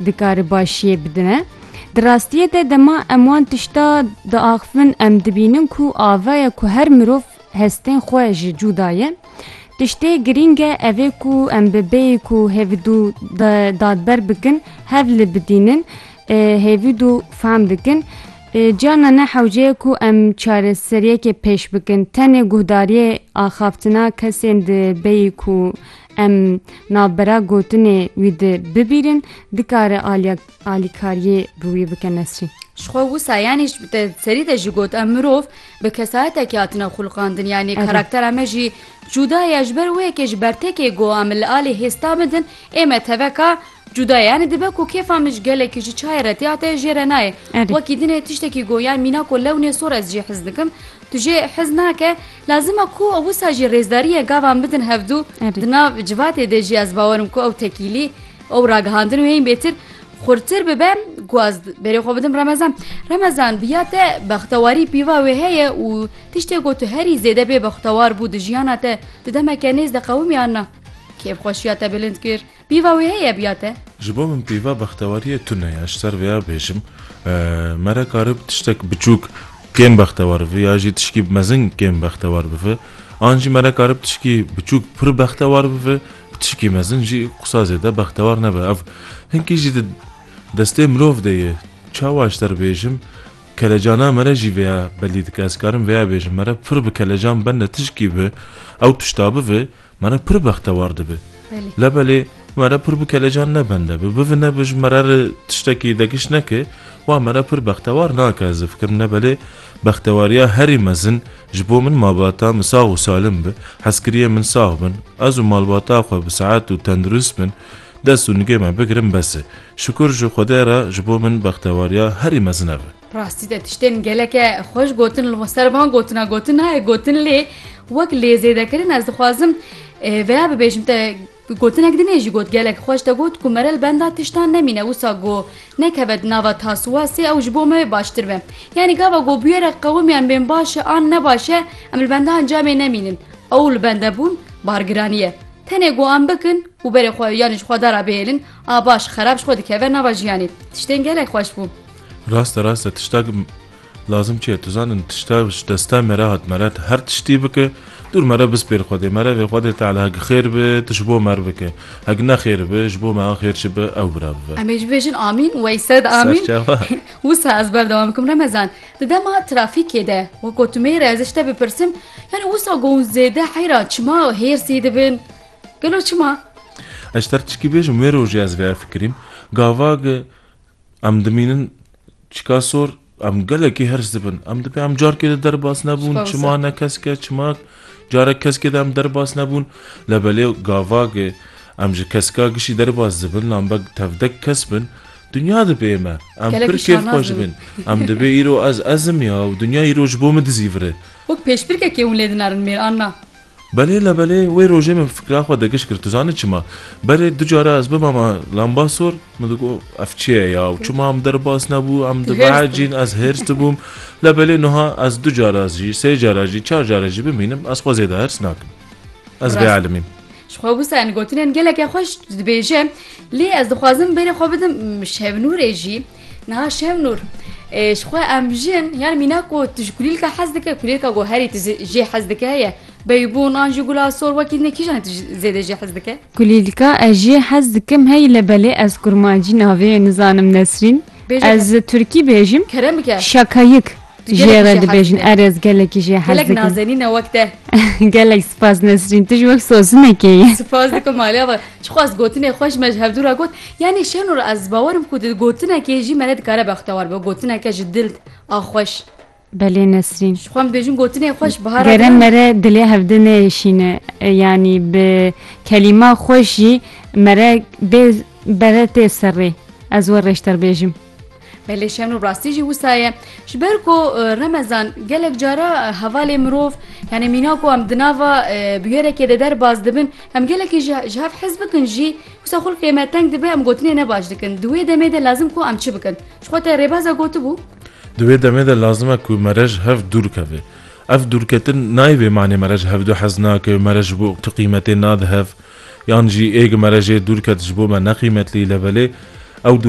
dikare başiyê bidine. Di rastiyê de dema em wan tişta diaxivin em dibînin ku avaya ku her mirov hestên xwe ji cûda ye. Tiştê girîng e ev ê ku em bi bêyî ku hêvidû dadber bikin hev li bidînin hêvidû fehm dikin. Ciyana ne hewce ye ku em çareseriyekê pêş bikin. Tenê guhdariyê axaftina kesên di bêyî ku Em navbera gotinê wî di bibîrin, dikare aliya alîkariyê bi wî bike Nesrîn. Ji xwe wisa yanî te serî de jî got em mirov bi kesayetekî hatine xulqandin yanî karaktera me jî cûda ye ji ber wê yekê ji bertekê got em li alî hêsta bidin ê me teveka Cuda ye, yanî dibe ku kêfa min ji gelekî ji çayê re tê ate jê re nayê. Wekî din e tiştekî got yan mînako lewnê sor ez jê hez dikim. Tu jê hez nake, lazim e ku wisa jî rêzdariyê gavan bidin hevdu. Di nav civatê de jî ez bawer im ku ew tekîlî, ew ragihandin û hên bêtir xurtir bibe ku ez berê xwe bidim Remezan. Remezan, bi ya te bextewarî pîva wê heye û tiştê ku tu herî zêde bê bextewar bû di jiyana te, tu demeke nêz de qewimî an na? Kêfxweşiya te bilind kir. Pîva wê heye biya te? Ji bo min pîva bextewariyê tune ye, ji ser vê ya bêjim me re karib tiştek biçûk kêm bextewar bibe ya jî tişkî mezin kêm bextewar bibe. An jî me re karib tişkî biçûk pir bextewar bibe, tişkî mezin jî qisa zêde bextewar nebe. Ev hinkî jî di destê mirov de ye. Çawa ji te re bêjim, kelecana me re jî vê ya belî dike. Ez karim vê ya bêjim, me re pir bi kelecan bende tişkî bi ew tişta bibe Me re pir bextewar dibe. Labelê me re pir bi kelecan nebende bi. Bivine bi ji me re re tiştekî degiş neke, wa me re pir bextewar nake. Ez difikirim labelê bextewariya herî mezin ji bo min mabata min sax û salim be. Hezkiriyê min sax bin. Ez û malbata xwe bi sehet û tendurist bin. Dest û nigê me bigirin bes e. Şikur ji Xwedê re ji bo min bextewariya herî mezin ev e. Rastî te tiştên geleke xweş gotin li ser van gotina gotin nayê gotin lê wek lêzêdekirin ez dixwazim veya bibêjim te gotinek dinê jî got gelek xweş te got ku mere li benda tiştan nemîne wisa go nekeve di nava taswasê ew ji bo me baştir be yanî gava go bûyere qewimiyan bên baş e an ne baş e em li benda encamê nemînin ew li bende bûn bargiraniye tenê go em bikin û berê xwe yanî ji xwe dara bêhêlin a baş xerab ji xwe dikeve nava jiyanê tiştên gelek xweş bû Raste raste tiştak lazim çi ye? Tu zanin tişta ji desta me re hat me re her tiştî bike dûr me re bispêr Xwedê me re vê Xwedê Teala hek xêr bi tu ji bo me re bike. Hek ne xêr bi ji bo me re xêr çi bi ew bi re bibe. Em ê jî bêjin amîn weyse de amîn. Serçava. Wisa ez berdewam bikim Remezan. Di dema trafîkê de weko tu mêr e ez ji te bipirsim yanî wisa ku hûn zêde heyran çima hêrsî dibin? Gelo çima? Ez ji te re tişkî bêjim wê rojê ez vê fikirîm gavage Em dimînin çika sor, em gelekî hers dibin. Em dibê em carkê de derbas nebûn, çima ne kesk e, çima carek keskê de em derbas nebûn. Lebelê gavagê em ji keska gişî derbas dibin, lambek tevdek kes bin, dinya dibê me. Em pir kêf xwe ji bin. Em dibê îro ez ezim ya û dinya îro ji bo min dizîvire. Wek pêşbirkekê hûn lê dinarin mêr an na. Belê la belê wê rojê min fikra xwe digiş kir. Tu zanî çima? Berê du cara ez bimama lambasor min digot ev çi ye ya û çima em derbas nebû em dibehecîn ez hêrs dibûm la belê nuha ez du cara jî sê cara jî çar cara jî bimînim ez xwe zêde hêrs nakim. Ez bêelimîm. Ji xwe wisa em gotinên geleke xweş dibêje lê ez dixwazim berê xwe bidim Şevnûrê jî. Niha Şevnûr, ji xwe em jin yan mîna ku tu ji kulîlka hez dike kulîlka ku herî tu jê hez dike heye beybûn an jî gula sor wekî din kîjan tu zêde jê hez dike? Kulîlka ez jê hez dikim hey le belê ez kurmancî navê wê nizanim Nesrîn. Ez turkî bêjim. Kerem bike. Şakayik. Jê re dibêjin erez gelekî jê hez dikin. Gelek nazenîne wek te. Gelek spas Nesrîn tu ji wek sosinekê yî. Spas dikim malê ava çixwe ez gotinê xwe ji me ji hevdû re got yanî şenûr ez bawer im ku di gotinekê jî me re dikare bextewar be gotineke ji dil a xweş. Belê Nesrîn. Ji xwe em dibêjin gotinê xweş bihara. Gere me re dilê hevdin neyêşîne yanî bi kelîma xweş jî me re bê bere tê serrê ez we rêşterbêjim. Belê şen û rastî jî wisa ye. Ji ber ku remezan gelek cara hevalê mirov yanê mîna ku em di nava bûyerekê de derbas dibin em gelekî ji ji hev hez bikin jî wisa xulkê me teng dibe em gotinê ne baş dikin. Di wê demê de lazim ku em çi bikin? Ji xwe te rêbaza gotibû? Di wê demê de lazim e ku me re ji hev dûr keve. Ev dûrketin nayê bê manê me re ji hev du hez nake, me re ji bo tu qîmetê nade hev yan jî êg me re jê dûr ket ji bo me neqîmetlî le belê ew dûr